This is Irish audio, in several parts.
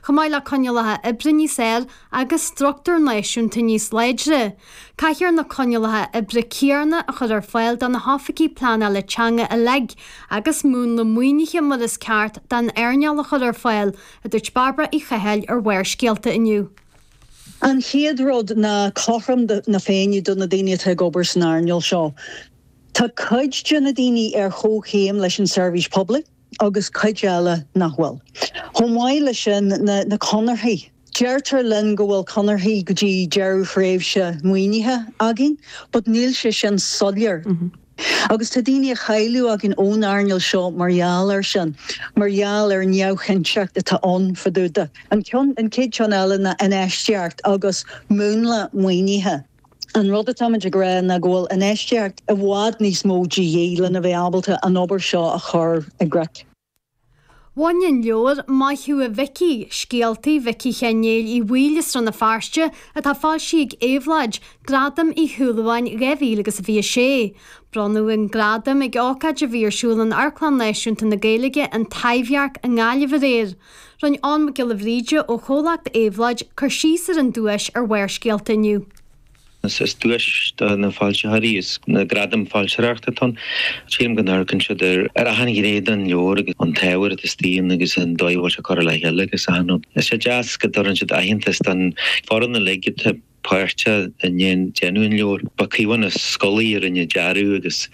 chomh maith le coinníollacha oibre níos fhearr agus struchtúir náisiúnta níos láidre. Caithfear na coinníollacha oibre céanna a chur ar fáil do na hoifigigh pleanála teanga uilig, agus múnla maoinithe mar is ceart don earnáil a chur ar fáil, a dúirt Bairbre Uí Chathail ar Bharrscéalta inniu. An chéad rud ná cothrom na féinne do na daoine atá ag obair san earnáil seo. Tá cuid de na daoine ar chomhchéim leis an seirbhís poiblí. agus cuid eile nach bhfuil. Chomh maith leis sin, na conarthaí. Deirtear linn go bhfuil conarthaí go dtí deireadh thréimhse maoinithe againn, but níl sé sin soiléir. Agus tá daoine a chailleadh againn ón earnáil seo mar gheall air sin, mar gheall ar an neamhchinnteacht atá ann fadúda. An chéad cheann eile ná infheistíocht agus múnla maoinithe. An rud atáimid ag rá ná go bhfuil infheistíocht i bhfad níos mó de dhíth lena bheith ábalta an obair seo a chur i gcrích. Bhain an leabhar Maith Thú a Mhicí, Scéaltaí Mhicí Sheáin Néill Uí Bhaoill as Rann na Feirste, atá foilsithe ag Éabhlóid, Gradam Uí Shúilleabháin 2026. Bronnadh an gradam ag ócáid a bhí ar siúl in Amharclann Náisiúnta na Gaeilge, an Taibhdhearc, i nGaillimh aréir. Rinne Eoghan Mac Giolla Bhríde ó Chomhlacht Éabhlóid cur síos ar an duais ar Bharrscéalta inniu. Is duais do na foilsitheoirí is na gradaim foilsitheoireachta atá ann. Sílim go n-amharcann siad ar achan ghné den leabhar agus an t-ábhar atá istigh ann agus an dóigh a bhfuil sé curtha le chéile agus achan rud. Is é deas go dtabharann siad aitheantas don foireann uilig atá. páirteach i ndéan déanamh an leabhair. Ba Caomhán Ó Scolaí a rinne dearadh agus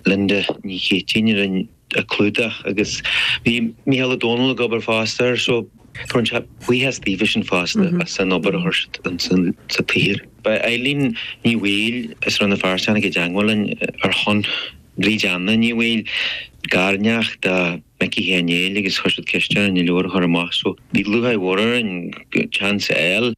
Linda Ní Chéitinn a rinne an clúdach agus bhí Mícheál Ó Domhnaill ag obair fosta air so fuair sé buíochas daofasan fosta as an obair a chuir siad ins an tsaothar. Ba í Eilín Ní Bhaoill as Rann na Feirste a tháinig i dteagmháil linn ar shon Bhríd Anna Ní Bhaoill, garneacht do Mhicí Sheáin Néill agus chuir siad ceist orainn an leabhar a chur amach so bhí lútháir mhór orainn an chance a fháil.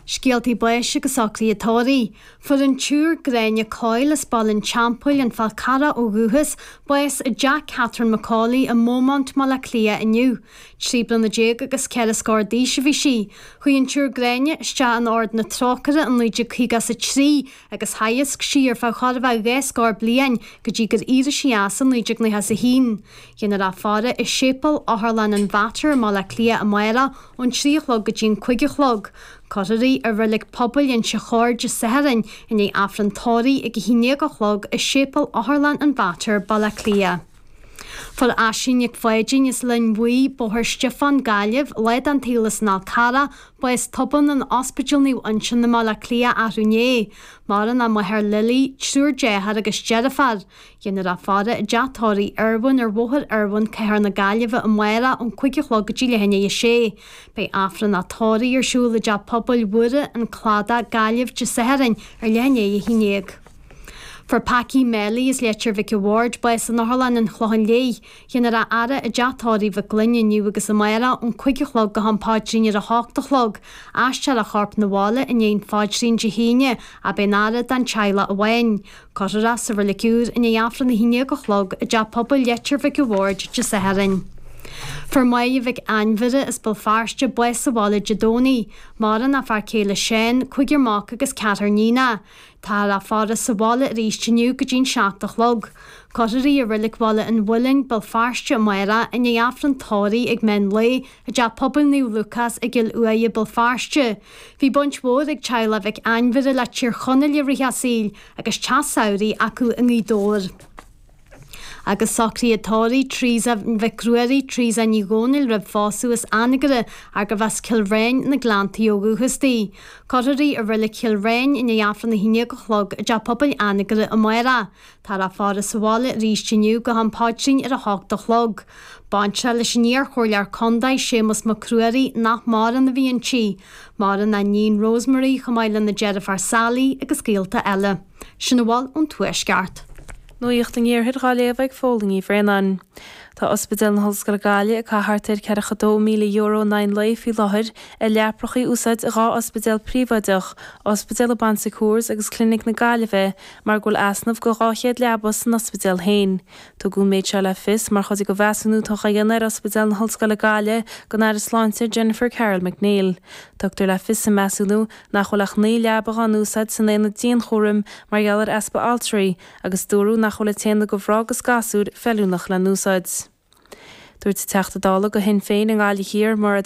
Scéaltaí Báis agus Socruithe Tórraimh, Fuair an tSiúr Gráinne Coyle as Baile an Teampaill, An Fál Carrach ó dhúchas, bás i dteach Catherine McAuley i mBeaumont i mBaile Átha Cliath inniu. Trí bliana déag agus ceithre scór d'aois a bhí sí. Chuaigh an tSiúr Gráinne isteach in Ord na Trócaire in 1953 agus theagasc sí ar feadh chóir a bheith dhá scór bliain go dtí gur éirigh sí as in 1991. Déanfar í a fhaire i Séipéal Otharlann an Mhater i mBaile Átha Cliath amárach ón trí a chlog go dtí an cúig a chlog. Cuirfear í ar reilig pobail Inse Chór Dé Sathairn i ndiaidh Aifreann Tórraimh ag a haon déag a chlog i Séipéal Otharlann an Mhater, Baile Átha Cliath. Fuair Aisling Nic Pháidín as Linn Bhuí, Bóthar Stiofáin, Gaillimh, lá den tsaol as an Fhál Carrach, bás tobann in Ospidéal Naomh Uinseann i mBaile Átha Cliath athrú inné. Maireann a máthair Lily, triúr deartháir agus deirfiúr. Dhéanfar a faire i dteach tórraimh Irwin ar Bhóthar Irwin, Cathair na Gaillimhe, amárach ón cúig a chlog go dtí leath i ndiaidh a 6. Beidh Aifreann a tórraimh ar siúl i dTeach Pobail Mhuire, An Cladach, Gaillimh, Dé Sathairn, ar leath i ndiaidh a 11. Fuair Packy Melly, as Leitir Mhic a' Bhaird bás in otharlann an Chlocháin Léith. Dhéanfar a fhaire i dteach tórraimh Mhic Fhloinn inniu agus amárach ón cúig a chlog go ham Paidrín ar a hocht a chlog. Aistreofar a chorp 'na bhaile i ndiaidh an Phaidrín Dé hAoine, ach beidh an fhaire don teaghlach amháin. Cuirfear é sa reilig úr i ndiaidh Aifreann a haon déag a chlog i dteach pobail Leitir Mhic a' Bhaird Dé Sathairn. Fuair Maedhbh Mhic Ainmhire as Béal Feirste bás sa bhaile Dé Domhnaigh, maireann a fear céile Seán, cúigear mac agus ceathrar iníon. Táthar á faire sa bhaile arís inniu go dtí'n seacht a chlog. Cuirfear í i Reilig Bhaile an Mhuilinn, Béal Feirste, amárach, i ndiaidh Aifreann tórraimh ag meán lae, I dTeach Pobail Naomh Lúcás i gCill Uaighe, Béal Feirste, bhí baint mhór ag teaghlach Mhic Ainmhire le Tír Chonaill i rith a saoil agus teach samhraidh acu i nGaoth Dobhair. Agus socraithe tórraimh Theresa Mhic Ruairí, Theresa Ní Dhomhnaill roimh phósadh as Anagaire ach gurbh as Cill Riáin na nGleanntaí ó dhúchas di. Cuirfear í i reilig Chill Riáin i ndiaidh Aifreann a haon déag a chlog i dTeach Pobail Anagaire amárach Táthar á faire sa bhaile arís inniu go ham Paidrín ar a hocht a chlog. Baintreach leis an iar-chomhairleoir contae, Séamus Mac Ruairí, nach maireann, a bhí inti, maireann a hiníon Rosemary, chomh maith lena deirfiúr Sally agus gaolta eile. Sin a bhfuil ón Tuaisceart. Nuacht an Iarthair dhá léamh ag Fódhla Ní Bhraonáin. Tá Ospidéal na hOllscoile Gaillimh ag caitheamh thart ar €42,000 in aghaidh an lae faoi láthair ar leaprachaí a úsáid i dhá ospidéal príobháideach, Ospidéal an Bon Secours agus Clinic na Gaillimhe, mar go bhfuil easnamh de 200 leaba san ospidéal féin. Tugadh an méid seo le fios mar chuid de mheasúnú atá á dhéanamh ar Ospidéal na hOllscoile Gaillimhe ag an Aire Sláinte, Jennifer Carroll MacNeill. Tugtar le fios sa mheasúnú nach bhfuil ach 9 leaba á n-úsáid san aonad dianchúraim mar gheall ar easpa altraí agus dúradh nach bhfuil an t-aonad do mhná agus gasúir feiliúnach le n-úsáid. Dúirt Teachta Dála do Shinn Féin i nGaillimh Thiar, Mairéad